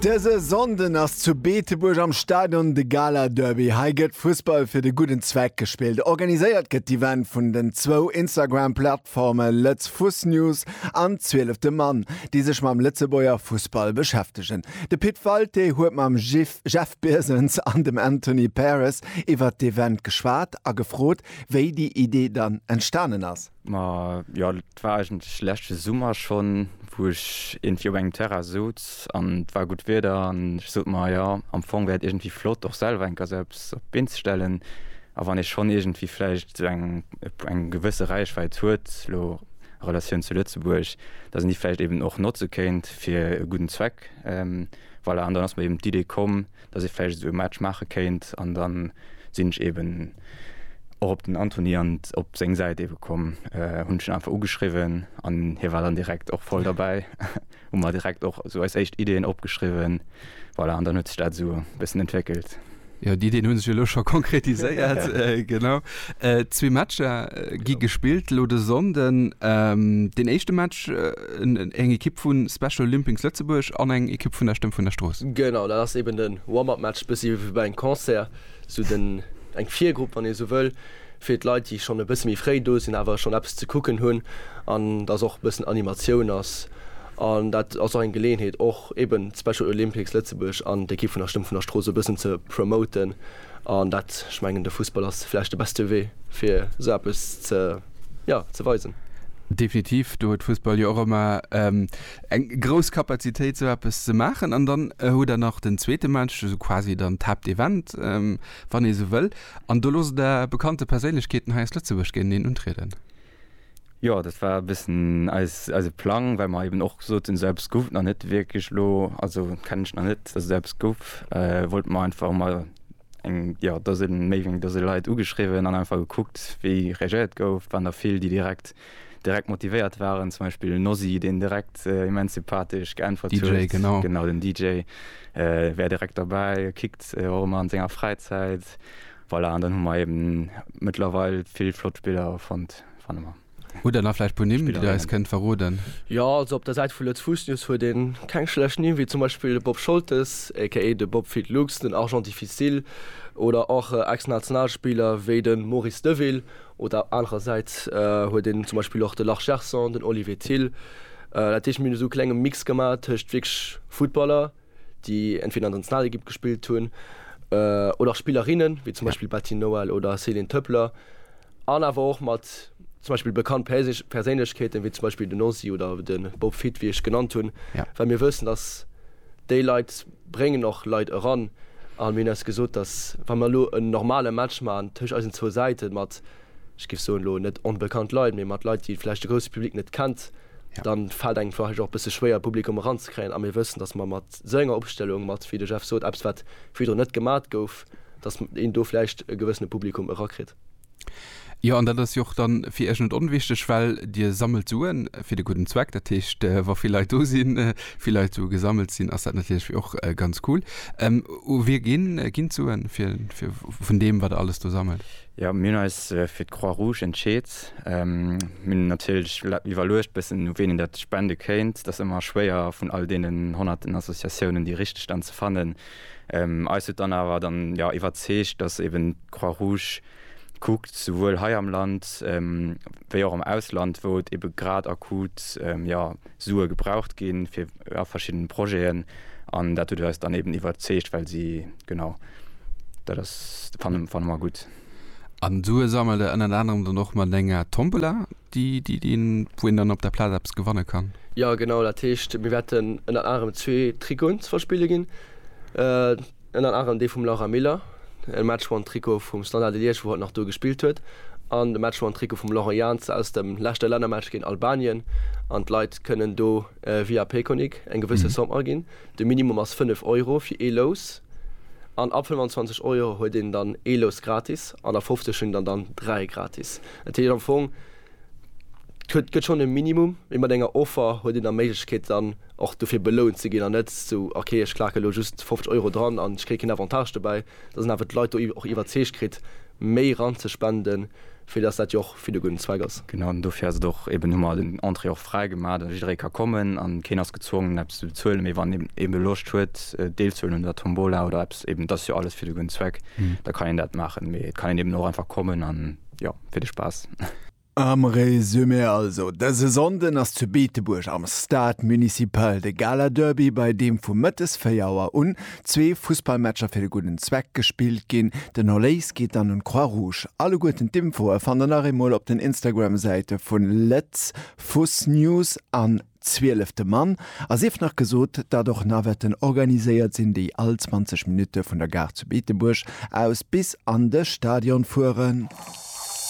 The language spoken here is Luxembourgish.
Dëse Sonnden ass zu Beetebuerg am Stadion de Gala-Derby. Hei gëtt Fussball fir de gudden Zweck gespillt. Organiséiert gëtt d'Event vun den zwou Instagram-Plattforme Lëtz Fuss News an Zwielefte Mann, déi sech mam Lëtzebuerger Fussball beschäftegen. De Pit Walté huet mam Jeff Birsens an dem Anthony Paris iwwert d'Event geschwat a gefrot, wéi déi Idee dann entstanen ass. Ma jo, dat war eigentlech leschte Summer schonn, wou ech iergendwéi op engem Terrain souz an et war gutt Wieder an ech sot mer, jo, am Fong wär et iergendwéi flott, och selwer eng Gazelle op eppes op d'Been ze stellen. A wann ee schonn iergendwéi vläicht sou eng, eng gewësse Räichwäit huet, elo a Relatioun zu Lëtzebuerg, datt een déi vläicht eeben och notze kéint fir e gudden Zweck, voilà. An dann ass mer eeben d'Idee komm. dass ee vläicht esou e Match maache kéint an da sinn ech eeben och op den Anthony an op seng Säit eebe komm, hunn ech en einfach ugeschriwwen an hie war dann direkt och voll derbäi. Hu mer direkt och esou eis éischt Ideeën opgeschriwwen, voilà, an dann huet sech dat esou e bëssen entwéckelt. Jo, d'Ideeën hu sech elo scho konkretiséiert, genau. Zwee Matcher gi gespillt elo de Sonnden. Deen éischte Match eng Ekipp vu Special Limpings Lëtzebuerg an eng Ekipp vun der Stëmm vun der Strooss. Genau, dat ass eben den Warm-up Match, bëssi wéi bei engem Concert, sou den, eng Virgrupp wann ee sou wëll, fir d'Leit déi schonn e bësse méi fréi do sinn awer schonn eppes ze kucken hunn an dass och e bëssen Animatioun ass an dat ass och eng Geleeënheet och eben d'Special Olympics Lëtzebuerg an d'Ekipp vun der Stëmm vun der Strooss e bëssen ze promoten. An dat, ech mengen, de Fussball ass vläicht de beste Wee, fir esou eppes ze, jo, ze weisen. Definitiv, do huet Fussball jo och ëmmer eng grouss Kapazitéit, esou eppes ze maachen. An dann hutt Der nach den zweete Mäertg, esou quasi dann d'Haaptevent, wann ee sou wëll. An do loosst Der bekannte Perséinlechkeeten hei aus Lëtzebuerg géinteneen untrieden. Jo, dat war e bëssen eis, eise Plang, well mer eben och soten, esou eppes gouf et nach net wierklech elo, also kennen ech nach net, dass esou eppes gouf, wollten mer einfach emol eng, jo, Dose, méi wéi eng Dose Leit ugeschriwwen an einfach gekuckt, wéi reagéiert gouf. Et waren der vill, déi direkt, direkt motivéiert waren, zum Beispill Nosy, deen direkt immens sympathesch geäntwert huet. DJ, genau. Genau, den DJ wär direkt derbäi, kickt och ëmmer an senger Fräizäit. Voilà, an dann hu mer eben mëttlerweil vill flott Spiller fonnt, fanne mer. Hutt Der nach vläicht puer Nimm, déi Der eis kënnt verroden? Jo, also op der Säit vu Lëtzebussnews huet ee keng schlecht Nimm, wéi zum Beispill de Bob Scholtes, aka de Bob Fit Lux, den Argent Difficile oder och Ex-Nationalspiller wéi de Maurice Deville. Oder anerersäits huet een zum Beispill och de Lars Gerson, den Olivier Thill. Dat heescht, mir hunn esou e klenge Mix gemaach tëscht wierklech Futtballer, déi entweder an der Nationalekipp gespillt hunn oder och Spillerinne wéi zum Beispill Betty Noel oder Céline Töpler an awer och mat zum Beispill bekannt Perséinlechkeeten, wéi zum Beispill den Ozzy oder de Bob Fitt, wéi ech genannt hunn, well mir wëssen, datt déi Leit bréngen och Leit eran. A mir hunn eis gesot, datt wa mir elo en normale Match maachen tëscht eisen zwou Säite mat, ech géif soen, elo net onbekannt Leit, mee mat Leit, déi vläicht de grousse Public net kennt, dann fält engem vläicht och e bësse schwéier e Publikum eranzekréien a mir wëssen, datt mer mat esou enger Opstellung, mat, wéi de Jeff sot, eppes wat virdrun net gemat gouf, datt een do vläicht e gewëssene Publikum erakritt. Jo, an dat ass jo och da fir Iech net onwichtig, well Dir sammelt Sue fir de gudden Zweck. Dat heescht, wa vill Leit do sinn, vill Leit Sue gesammelt sinn, ass dat natierlech och ganz cool. U wie ginn d'Suen vun deem, wat Der alles do sammelt? Jo, mir hunn eis fir d'Croix Rouge entscheet. Mir hunn natierlech iwwerluecht bëssen, u ween een dat spende kéint. Dat ass ëmmer schwéier, vun all deenen honnerten Associatiounen déi richteg dann ze fannen. Eis huet dann awer dann, jo, iwwerzeegt, datt eben d'Croix Rouge kuckt, souwuel hei am Land wéi och am Ausland, wou et ebe grad akut, jo, Sue gebraucht ginn fir a verschiddenen Projeten an dat huet eis dann eben iwwerzeegt, well si, genau, dat ass, fannen, fanne mer gutt. An Sue sammelt Der ënnert anerem dann och mat enger Tombola, déi, déi, déi een, wou een dann op der Plaz eppes gewanne kann? Jo, genau, dat heescht, mir wäerten ënnert anerem zwee Trikoten ze verspille ginn. Ënnert anerem dee vum Laura Miller, e Match won Trikot vum Standard de Liège wou hatt nach do gespillt huet, an de Match won Trikot vum Laurent Jans aus dem leschte Lännermatch géint Albanien, an d'Leit kënnen do via Payconiq eng gewësse Somme aginn. De Minimum ass 5 Euro fir ee Lous, an ab 25 Euro huet een dann ee Lous gratis, an ab 50 hunn der dann dräi gratis. Dat heescht am Fong. Et gëtt schonn e Minimum, mee mat enger Offer huet een da Méiglechkeet dann och dofir belount ze ginn an net sou, ok ech klaken elo just 50 Euro dran an ech kréie keen Avantage dobäi, dass een awer d'Leit do och iwwerzeegt kritt méi ranzespenden, fir dass dat jo och fir de gudden Zweck ass. Genau, an dofir ass et och eben, hu mer den Entrée och fräi gemaach, dass jidderee ka kommen a keen ass gezwongen eppes ze bezuelen, mee wann een eben Loscht huet deelzehuelen un der Tombola oder eppes, eben et ass jo alles fir de gudden Zweck, da kann een dat maachen, mee et kann een eben och einfach kommen an Jo, fir de Spaass. Am Resumé also, Dëse Sonnden ass zu Beetebuerg am Stade Municipal de Gala Derby, bei deem vu mëttes 4 Auer un zwee Fussballmatcher fir de gudden Zweck gespillt ginn. Den Erléis geet dann un d'Croix Rouge. Alleguerten d'Infoe fannt der nach eemol op den Instagram-Säite vun Lët'z Fuss News an. Zwielefte Mann, a sief nach gesot, datt och Navetten organiséiert sinn, déi all 20 Minutte vun der Gare zu Beetebuerg aus bis an de Stadion fueren.